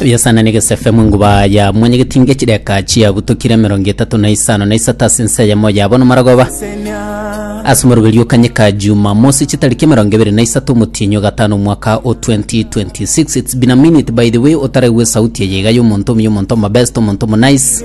biasana na egesefe munguba ya mwanyegetinga echideka chiagutokire emerongo etatu na isano na isato ase ense eyemo yabo nomaragoba ase omorogeri okanyeka jumamosi chitariki emerongo ebere na isato omotienyi ogatano omwaka o 2026 its been a minute by the way otaregwe esauti eye iga yomonto omuya omonto omabest omonto omonice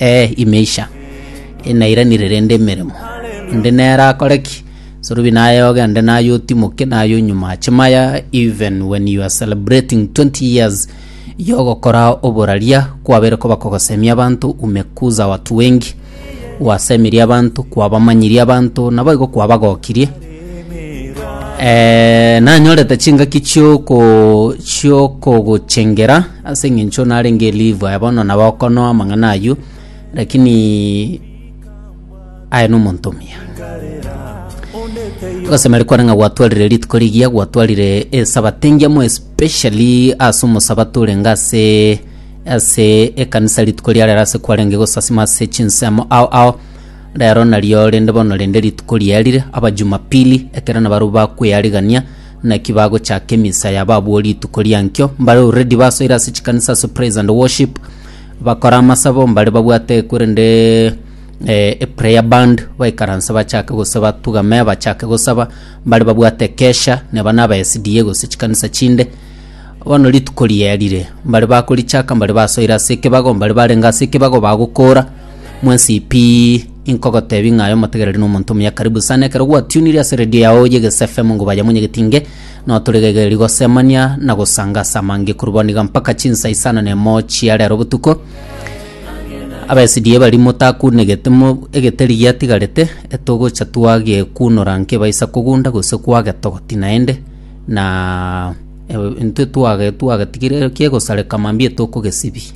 Ee, imeisha, inairanire rende emeremo. Onde nere akore ki? Sorubi naye oge, onde naye otimoke, naye onyuma ache maya, even when you are celebrating 20 years yogokora oboraria, kwabere koba kogosemia abanto, umekuza watu wengi, gwasemeria abanto, kwabamanyirie abanto, naboigo kwabagokirie. Ee, nanyorete chingaki chioko chiokogochengera ase eng'encho narenge elive aye bono nabo okonoa amang'ana ayio lakini aye nomonto omuya ogosemeri kware ng'a gwatwarire rituko rigiya gwatwarire esabato engiya more especially ase omosabato orenge ase ase ekanisa rituko riarero ase kwarenge gosasima ase chinsemo ao ao Rero nario rende bono rende rituko riarire Abajumapili, ekero nabarabwo bakwearigania naki bagochaka emisa yabo abwo rituko riankio, mbare already basoire ase chikanisa ase praise and worship, bakore amasabo, mbare babwate korende eh, e prayer band, baikaranse bachake gose batugame bachake gosaba, mbare babwate ekesha, neba na aba SDA gose chikanisa chinde, bono rituko riarire, mbare bakorichaka mbare basoire ase ekebago, mbare barenge ase ekebago bagokora, Mwesipi, inkogotebi ng'a aye omotegereri nomonto omuya karibu sana. Ekero gwatunire ase redio yao y'egese FM ngo baye monyegeti nge, notoregegeri gosemania na gosanga ase amange korwa bono iga mpaka chinsa isano na emo chia rero botuko. Abaesidi bari motakunegete mo egeteri giatigarete, etogocha twagekunora nkebaisa kogunda gose kwagetogoti naende na intwe twage twagetigire kiegosareka mambia etokogesibi.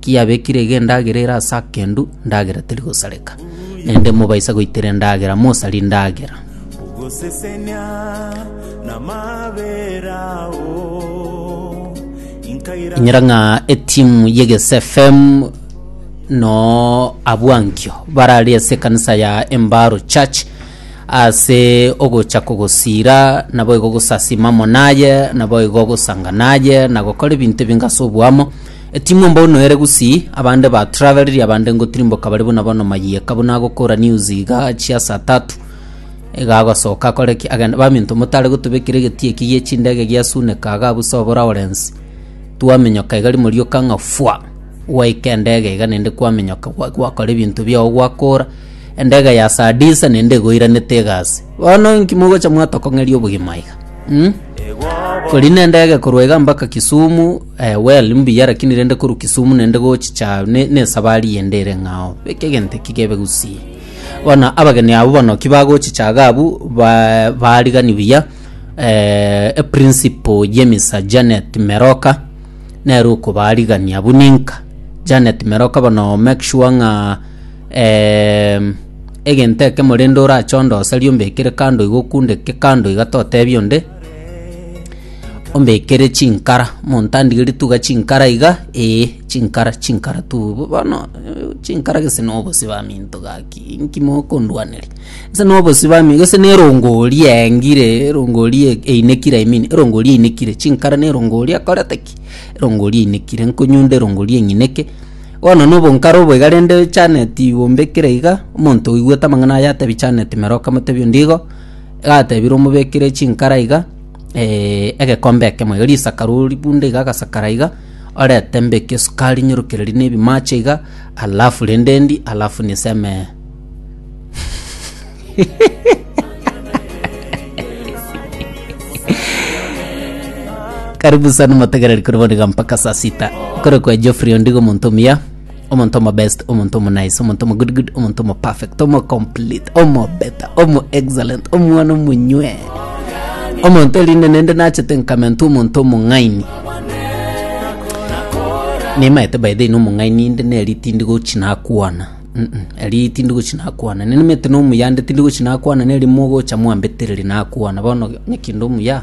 Kiabekire iga endagera ere ase akendu, ndagera teri gosareka. Naende mobaisa goitera endagera, mosari ndagera. Ogosesenia namabera ao inkaira Inyora ng'a etimu y'Egese FM no abwankio barari ase ekanisa ya Embaro Church ase ogocha kogosiira naboigo gosasima amo naye naboigo gosanga naye na gokora ebinto ebinge ase oboamo. Timwomba ono ere gusii, abande ba traveled abande ngotirimboka bare buna bono mayieka buna agokora news iga chia saa tatu iga agosoka akore ki agende baminto motare gotobekera egetii eki gie chindege gia suneka iga abuse obo Lawrence twamenyoka iga rimorioka ng'a fwa gwaika endege iga naende kwamenyoka gwa gwakora ebinto biago gwakora endege ya saa disa naende egoiranete iga ase bono inki mogocha mwatokong'eria obogima iga mm? kori nendege korwa iga mpaka Kisumu Eh, well, mbuya lakini rende koru Kisumu nende gochicha ne- nesabari yende ere ng'ao. Beke egento eki gebe gusii. Bono abageni abo bono ki bagochicha iga abwo ba- barigani buya eh, eprinciple ye Misa Janet Meroka nere okobarigania buna inka. Janet Meroka bono make sure ng'a em, egento ekemo rende orache ondoserie ombekere kando iga okunde eke kando iga totebia onde, Ombekere chinkara, montandigeri tuga chinkara iga, ee chinkara chinkara tuu. Bo- Bono eh, chinkara gese na obosio baminto gaki, inki mokondwaneria? Gese na obosio bami gese na erongori yaengire, erongori e- einekire I mean, erongori einekire. Chinkara na erongori ekorete ki? Erongori einekire, nkonyunda erongori eng'ineke. Bono na obonkare obo iga rende Janet ombekire iga, omonto oigwete amang'ana aya atebi Janet meroka motebi onde igo. Gatebire omobekire chinkara iga, eh, egekombe ekemo iga, risakaro oribunde iga agasakara iga, orete mbeke esukari nyorokererie na ebimache iga, alafu rende ndi, alafu niseme. Karibu sana motegereri kore bono iga mpaka saa sita. Kore kwa Geoffrey Ondigo omonto omuya. omonto omo best omonto omo nice omonto omo good good omonto omo perfect omo complete omo better omo excellent omwana omonywee omonto erinde nende nachete nkamenta omonto omong'aini nimaete by the way nomong'aini inde neri tindi gochi nakwana Mm-mm, eri tindi gochi nakwana ninimete nomuya inde tindi gochi nakwana neri mogocha mwambetereri nakwana bono nyekinda omuya